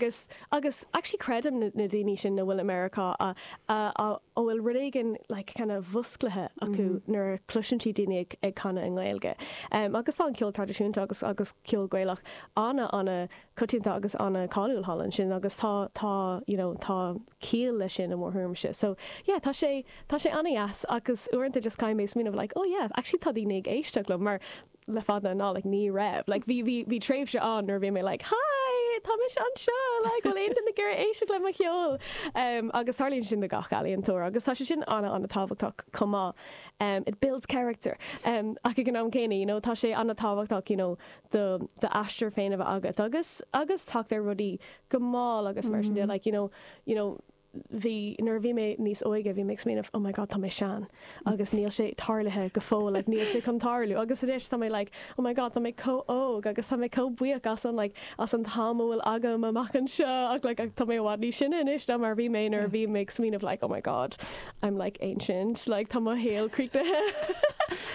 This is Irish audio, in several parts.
Agus, agus actually creidim na, na daoine sin na bhfuil i Meiriceá a, a, a, a bhfuil rud éigin like kind of múscailte acu nuair a chloiseann siad daoine ag, ag canadh i nGaeilge. Em, agus tá an ceol traidisiúnta agus, agus ceol Gaelach ana, ana choitianta agus ana cháiliúil thall ansin agus tá, tá you know, tá ciall leis sin i mo thuairimse. So, yeah, tá sé, tá sé ana dheas agus uaireanta just caithfidh mé smaoineamh like, oh yeah, actually tá daoine ag éisteacht liom mar, le fada an lá ní raibh like bhí bhí bhí tréimhse ann nuair a bhí mé like hi tá mise anseo like bhfuil aon duine ag iarraidh éisteacht le mo cheol um agus tarlaíonn sin do gach ealaíontóir agus tá sé sin ana ana tábhachtach chomh maith um it builds character um ach ag an am céanna you know tá sé ana tábhachtach you know do d'aistear féin a bheith agat agus agus teacht ar rudaí go mall agus mar sin de like you know you know bhí, nuair a bhí mé níos óige, bhí mé ag smaoineamh, oh my god, tá mé sean agus níl sé tarlaithe go fóill, like níl sé chun tarlú agus anois tá mé like, oh my god, tá mé chomh óg agus tá mé chomh buíoch as an like as an t-am a bhfuil agam amach anseo ach like tá mé i bhfad níos sine anois ná mar a bhí mé nuair a bhí mé ag smaoineamh like oh my god, I'm like ancient, like tá mo shaol críochnaithe.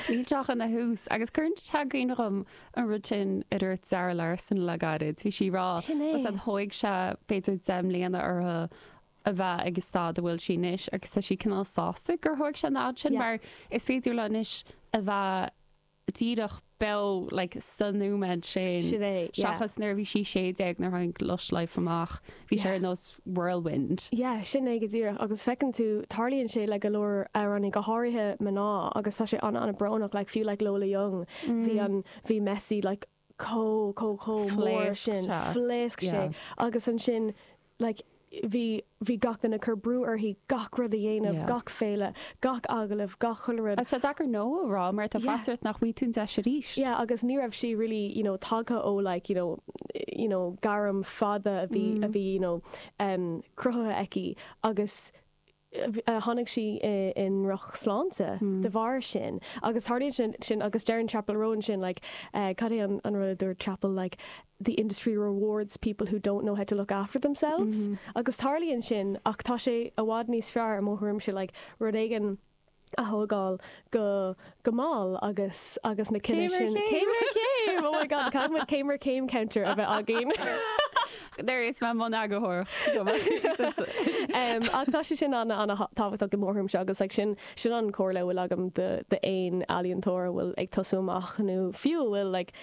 Níl sé ach ina thús agus cuireann tagann dhom an rud sin a dúirt Zara Larsson le gairid, bhí sí ag rá, Sin é. said thóig sé b'fhéidir deich mbliana uirthi a bheith ag an staid a bhfuil sí anois agus tá sí cineál sásta gur thóig sé an fhad sin Yeah. mar is féidir léi anois a bheith díreach beo like sa nóiméad sin Sin é, yeah. seachas nuair a bhí sí sé déag nuair a tháinig Lush Life amach. Bhí sé ar nós whirlwind. Yeah, sin é go díreach agus feiceann tú, tarlaíonn sé le go leor amhránaí, go háirithe mná agus tá sé ana ana brónach, like fiú like Lola Young, bhí an, bhí Messy like chomh, chomh, chomh mór sin, phléasc sé agus ansin like bhí, bhí gach duine ag cur brú uirthi gach rud a dhéanamh, gach féile, gach agallamh, gach uile rud. Tá sé deacair no a rá mar tá faitíos ort nach bhfaighidh tú an deis arís. Yeah, agus ní raibh sí really, you know, tagtha ó like, you know, you know, gairm fada a bhí, a bhí, you know, em, cruthaithe aici agus a tháinig sí i, i ndroch sláinte de bharr sin. Agus tharlaíonn sin, sin, agus deireann Chappell Roan sin like, eh, cad é an, an rud a dúirt Chappell, like, the industry rewards people who don't know how to look after themselves agus tarlaíonn sin ach tá sé i bhfad níos fearr i mo thuairimse like rud éigin a thógáil go go mall agus agus na cinn sin céim ar chéim! oh my god an caithfidh muid céim ar céim counter a bheith againn? there is my mboneagarthóireacht go maith! ach tá sé sin ana ana tábhachtach i mo thuairimse agus like sin sin an comhairle a bhfuil agam do d'aon ealaíontóir a bhfuil ag tosú amach nó fiú a bhfuil like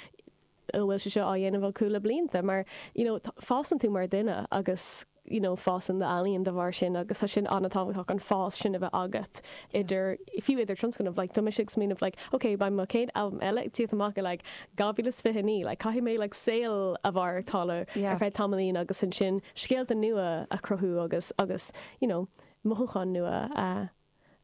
bhfuil sé seo á dhéanamh le cúpla blianta mar you know fásann tú mar duine agus you know fásann do ealaíon de bharr sin agus tá sin an-tábhachtach an fás sin a bheith agat idir fiú idir tionscnamh like tá mise ag smaoineamh like ok beidh mo chéad albam eile ag tíocht amach i like 2029 like caithfidh mé like saol a mhaireachtáil yeah. ar feadh tamaillín agus ansin scéalta nua a chruthú agus agus you know mothúcháin nua a uh,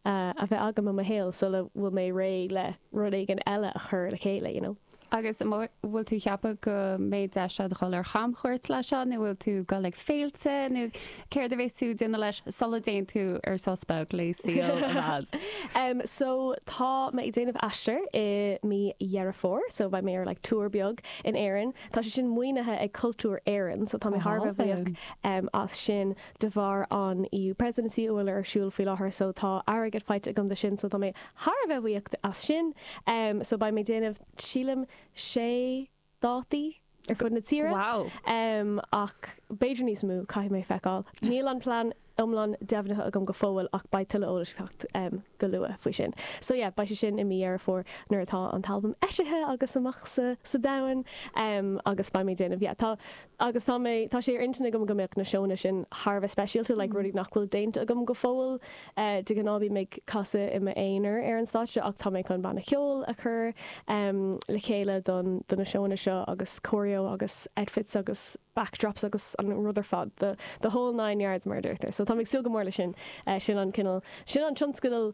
a bheith agam i mo shaol sula bhfuil mé réidh le rud éigin eile a chur le chéile, you know. Agus an bhfuil tú cheapadh go mbeidh deis a'd dhul ar chamchuairt leis seo nó bhfuil tú ag dul ag féilte nó céard a bheas tú ag déanamh leis sula dtéann tú ar sos beag le saol ar fad? Em so tá mé ag déanamh aistir i mí Dheireadh Fómhair so beidh mé ar like tour beag in Éirinn. Tá sé sin maoinithe ag Cultúr Éireann so tá mé thar a bheith buíoch em as sin. de bharr an EU Presidency a bhfuil ar siúl faoi láthair so tá airgead faighte agam do sin so tá mé thar a bheith buíoch as sin em so beidh mé déanamh sílim sé dátaí ar fud na tíre wow em ach b'fhéidir níos mó caithfidh mé feiceáil níl an plean iomlán deimhnithe agam go fóill ach beidh tuilleadh eolais ag teacht em go luath faoi sin so yeah beidh sé sin i mí Dheireadh Fómhair nuair atá an t-albam eisithe agus amach sa sa domhan em agus beidh mé déanamh yeah tá agus tá mé, tá sé ar intinn agam go mbeadh na seónna sin thar a bheith speisialta, like rudaí nach bhfuil déanta agam go fóill. De ghnáth bím ag casadh i m'aonar ar an stáitse ach tá mé chun banna ceoil a chur le chéile don, do na seónna seo agus choreo agus outfits agus backdrops agus an rud ar fad, the, the whole nine yards mar a deirtear. So tá mé ag súil go mór leis sin. Sin an cineál, sin an tionscadal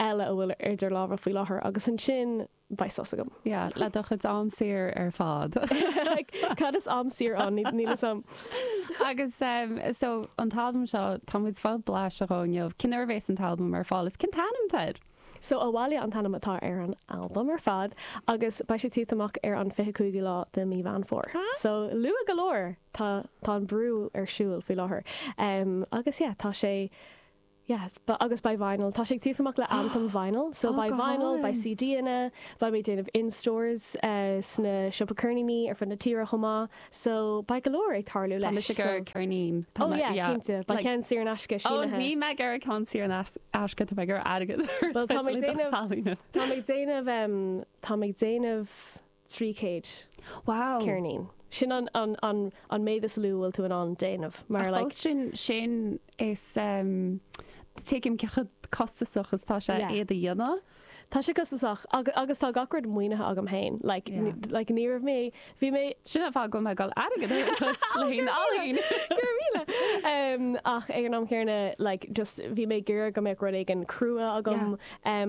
eile a bhfuil idir lámha faoi láthair agus ansin, beidh sos agam. Yeah, le do chuid am saor ar fad. Cad is am saor ann? Níl fhios a'm. Agus so an t-albam seo, tá muid fáil blas dhó inniu. Cén uair a bhéas an t-albam ar fáil? Is cén t-ainm atá air? So abhaile an t-ainm atá ar an albam ar fad agus beidh sé tíocht amach ar an 25ú lá de mí Mheán Fómhair. So luath go leor. Tá tá an brú ar siúl faoi láthair. Agus yeah, tá sé Yes, agus beidh vinyl. Tá sé ag tíocht amach le anthem vinyl. So beidh vinyl, beidh CDanna, beidh mé ag déanamh in stores sna siopaí ceirníní ar fud na tíre chomh maith. So beidh go leor ag tarlú leis. Tá mise ag iarraidh ceirnín. Oh yeah, cinnte. Beidh ceann saor in aisce sínithe. Oh, níl mé ag iarraidh ceann saor in aisce, tá mé ag iarraidh airgead a thabhairt le do cheirnín. Tá mé ag déanamh, tá mé ag déanamh, tá mé ag déanamh. 300 Wow! ceirnín. Sin an méid is lú a bhfuil tú in ann déanamh. Mar like. Ach fós sin tuigim cé chomh costasach is tá sé iad a dhéanamh. Tá sé costasach agus tá gach rud maoinithe agam féin. Like ní raibh mé, bhí mé. Sin an fáth go mbeidh mé ag goil airgead a thabhairt le haghaidh ealaín. Go raibh míle. Ach ag an am céarna like just bhí mé ag iarraidh go mbeadh rud éigin crua agam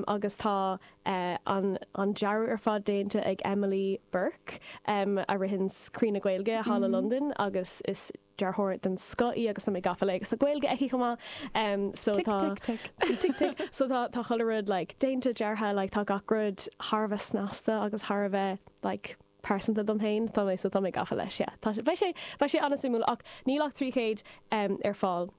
agus tá an dearadh ar fad déanta ag Emily Burke a ritheanns Croí na Gaeilge thall i Londain agus is dearthóir den scoth í agus tá mé gafa léi agus tá Gaeilge aici chomh maith so tá tic tic tic tic tic so tá tá chuile rud like déanta deartha like tá gach rud thar a bheith snasta agus thar a bheith like pearsanta dom féin tá mé so tá mé gafa leis yeah tá sé beidh sé beidh sé an-suimiúil ach níl ach 300 um, ar fáil.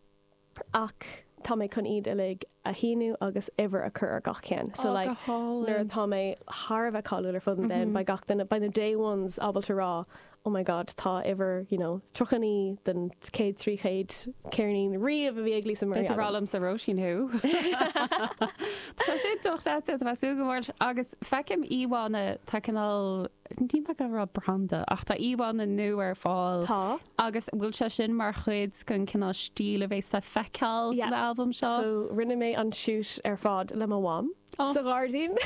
Ach tá mé chun iad uilig a shíniú agus uimhir a chur ar gach ceann. So like nuair atá mé thar a bheith cáiliúil ar fud an domhain, beidh gach duine, beidh na day ones ábalta rá, oh my god, tá uimhir you know 39 den chéad trí chéad ceirnín riamh a bhí ag Lisa Murray agam. Beidh rá liomsa Róisín Who. Tá sé dochreidte a bheith súil go mór agus feicim íomhánna tá cineál ní bheadh ag rá branda ach tá íomhánna nua ar fáil. Tá. Agus an bhfuil sé sin mar chuid den cineál stíl a bheas le feiceáil san albam seo? Yeah, so rinne mé an shoot ar fad le mo mham sa ghairdín.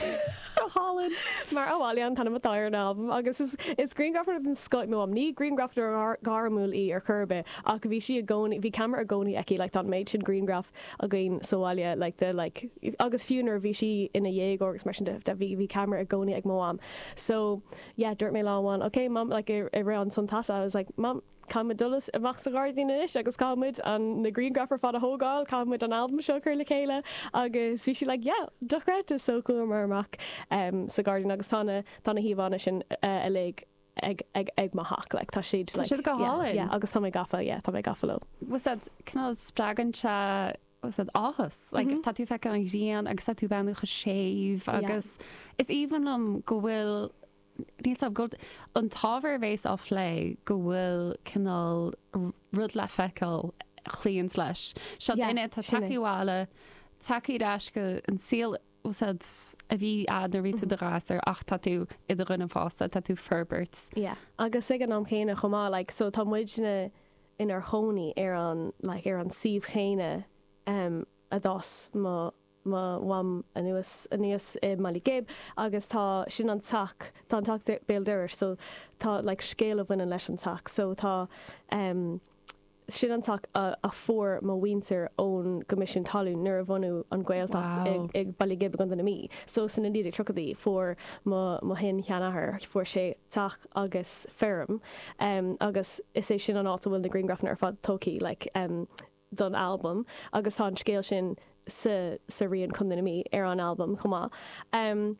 Go hálainn! Mar Abhaile an t-ainm atá ar an albam agus is grianghrafadóir den scoth í mo mham. Ní grianghrafadóir gairmiúil í ar chor ar bith ach bhí sí i gcónaí, bhí camera i gcónaí aici, like tá an méid sin grianghraf againn sa bhaile like de like agus fiú nuair a bhí sí ina dhéagóir agus mar sin de, bhí camera i gcónaí ag mo mham. So. yeah, dúirt mé lá amháin, ok mam, like i rith an tonn teasa, I was like, mam, caithfidh muid dul amach sa ghairdín anois agus caithfidh muid an, na grianghraif ar fad a thógáil, caithfidh muid an albam seo a chur le chéile agus bhí sí like, yeah, dochreidte, so chuamar amach em sa ghairdín agus tá na, tá na híomhánna sin uilig ag, ag, ag mo theach, like tá siad, like, siad go hálainn. yeah, agus tá mé gafa, yeah, tá mé gafa leo. Bhuel, cineál spreagann sé siad áthas. Like tá tú ag feiceáil an ghrian agus tá tú breathnú chomh séimh agus is aoibhinn liom go bhfuil níl a fhios agam go an t-ábhar a bheas á phlé go bhfuil cineál rud le feiceáil a chloíonns leis. Seo duine atá tagthaí abhaile tagthaí ar ais go an saol úd a bhí agat nuair a bhí tú i do ghasúr ach tá tú i do dhuine fásta tá tú ag forbairt. Yeah agus ag an am chéanna chomh maith like so tá muidne inár chónaí ar an like ar an suíomh chéanna em a d'fhás mo mo mham anuas aníos i mBaile Ghib agus tá sin an teach tá an teach béal dorais so tá like scéal a bhaineann leis an teach so tá em sin an teach a a fuair mo mhuintir ón gCoimisiún Talún nuair a bhunaíodh an Ghaeltacht i wow. i Baile Ghib i gContae na Mí so sna 1930idí fuair mo mo shin sheanathair fuair sé teach agus feirm em agus is é sin an áit a bhfuil na griangrafanna ar fad tógthaí like em don albam agus tá an scéal sin sa sa rian Contae na Mí ar an albam chomh maith em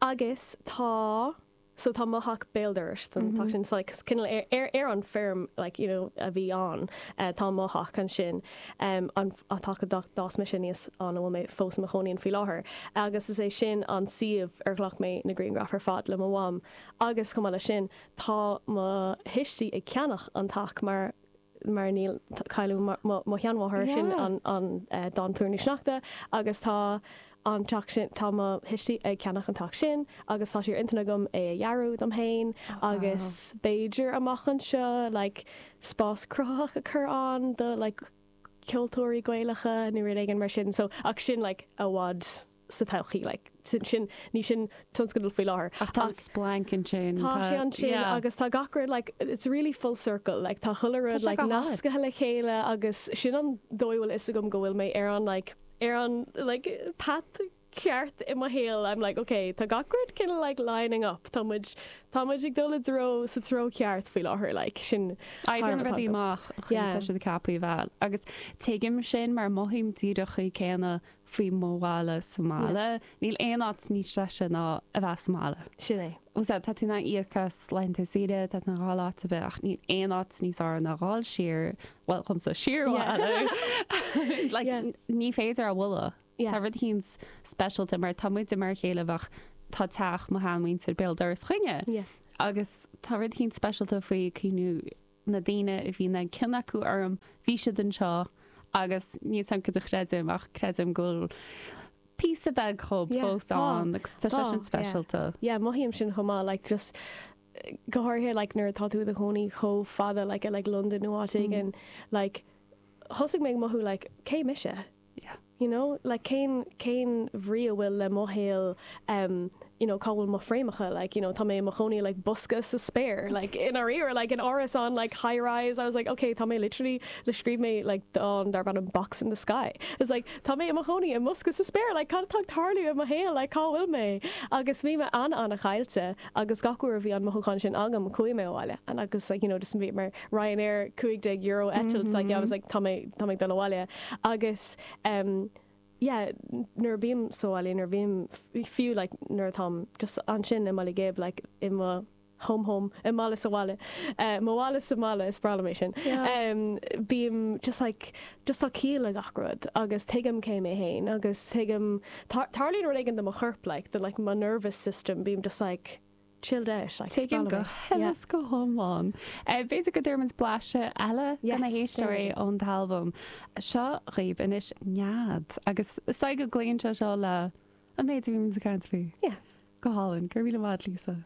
agus tá so tá mo theach béal dorais don teach sin so like cineál ar ar ar an bhfeirm like you know a bhí ann eh tá mo theach ansin em an an teach a d'fhás mise aníos ann a bhfuil mé fós i mo chónaí ann faoi láthair agus is é sin an suíomh ar ghlac mé na griangraif ar fad le mo mham Agus chomh maith leis sin, tá mo thuistí ag ceannach an teach mar, mar níl, cailleadh mo, mo sheanmháthair, sin an, an dán Plúirín Sneachta, agus tá an teach sin, tá mo thuistí ag ceannach an teach sin agus tá sé ar intinn agam é a dhearadh dom féin agus b'fhéidir amach anseo like spás cruthaitheach a chur ann do like ceoltóirí Gaelacha nó rud éigin mar sin so ach sin like i bhfad sa todhchaí. Like, sin, sin, ní sin tionscadal faoi láthair. Ach tá an splanc ansin. Tá sé ansin yeah. agus tá gach rud like, it's really full circle. Like, tá chuile rud like, nascaithe le chéile agus sin an dóigh a bhfuil a fhios agam go bhfuil mé ar an, like, ar an, like, path ceart i mo shaol. I'm like, ok, tá gach rud kind of like lining up. Tá muid, tá muid ag dul i dtreo, sa treo ceart faoi láthair. Like, sin. Aibreán rud amach, yeah. tá siad ceapaí bheal. Agus tuigim sin mar mothaím díreach an chaoi chéanna faoi mo bhaile sa mbaile. Níl aon áit níos deise ná a bheith sa mbaile. Sin é. Sea, tá tú in ann íoc as laethanta saoire, tá tú in ann dhá áit a bheith ach níl aon áit níos fearr ná dhul siar, bhuel, dhomsa, siar abhaile. Like, ní féidir é a bhualadh. Tá rud eicínt speisialta mar tá muide mar a chéile ar bhealach, tá teach mo sheanmhuintir béal dorais linne agus tá rud eicínt speisialta faoi cuimhniú, na daoine a bhí an-chion acu orm, bhí siad anseo agus níl a fhios agam céard a chreidim ach creidim go bhfuil píosa beag dhíob Yeah, fós tá, ann agus tá sé tá, sin yeah. speisialta. Yeah, mothaím sin chomh maith, like just go háirithe like nuair atá tú i do chónaí chomh fada like i like Londain nó áit éigin, like thosaigh mé ag mothú like cé mise? you know, like cén, cén bhrí a bhfuil le mo shaol em you know cá bhfuil mo fhréamhacha like you know tá mé i mo chónaí i like bosca sa spéir like i ndáiríre like in árasán like high rise I was like ok tá mé literally like scríobh mé like dán darb ainm Box in the Sky it's like tá mé i mo chónaí i mbosca sa spéir like cad atá ag tarlú i mo shaol like cá bhfuil mé agus bhí mé an- an-chaillte agus gach uair a bhí an mothúchán sin agam chuaigh mé abhaile and agus like you know just bhí mé Ryanair cúig déag euro eitilt like yeah I was like tá mé tá mé ag dul abhaile agus em yeah nuair a bhím sa bhaile nuair a bhím fiú like nuair atáim just ansin i mBaile Ghib like i mo home home i mo bhaile sa bhaile eh mo bhaile sa mbaile is breá liom é sin Yeah. em bím just like just tá ciall le gach rud agus tuigim cé mé fhéin agus tuigim tar- tarlaíonn rud éigin do mo chorp like the like mo nervous system bím just like chilled out like spell Tuigim go huile is go hiomlán. B'fhéidir go dtabharfaimid blaiseadh eile do na héisteoirí ón t-albam seo dhaoibh anois nead agus is dóigh go gcloíonn sé seo le an méid a bhímid ag caint faoi. Yeah. Go hálainn, go raibh míle maith Lisa.